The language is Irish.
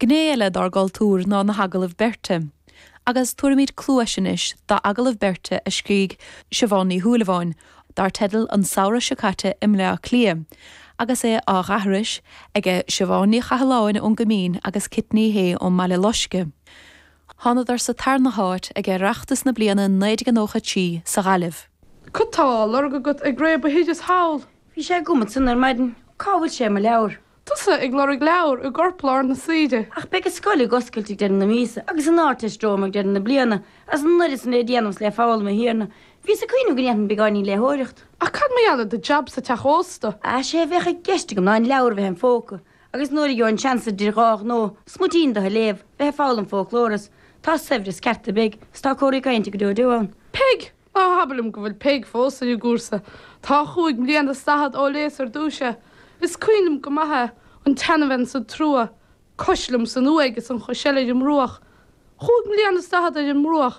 Gné eile dár gcultúr ná na hagallaimh beirte, agus tabharfaimíd cluais anois d'agallamh beirte a scrígh Siobhán Ní Shúilleabháin dar teideal An Samhradh seo caite i mBleá Cliath, agus é á dh'aithris aige Siobhán Ní Chathalláin ón gCoimín agus Cit Ní Shé ón mBaile Loisce. Thánadar sa tarna háit ag Oireachtas na bliana 1993 sa Ghaillimh. Cad tá á lorg agat ag réabadh thíos thall? Bhí sé agam ansan ar maidin. Cá bhfuil sé, mo leabhar? Tusa ag lorg leabhar i gcorplár na saoire. Ach beidh an scoil ag oscailt ag deireadh na míosa, agus an Ardteist romham ag deireadh na bliana, agus an oiread san le déanamh is le foghlaim, a Thiarna. Bhíos ag cuimhneamh go ndéanfainn beagáinín léitheoireacht. Ach cad mar gheall ar do jab sa teach ósta? Sea, sé a bheadh i gceist agam ná an leabhar a bheith im phóca, agus nuair a gheobhainn an seans idir dhá ghnó, smuitín do a léamh, bheith ag foghlaim fóclóra, is tá saibhreas ceart i bPeig, is tá corthaí cainte go deo deo ann. Peig! Ná habair liom go bhfuil Peig fós ar an gcúrsa. Tá chúig mbliana is daichead ó léas ar dtúis é. Is cuimhin liom go maith é, an tseanabhean san trua, cos liom san uaigh is an chos eile ar an mbruach. Chúig mbliana is daichead ar an mbruach.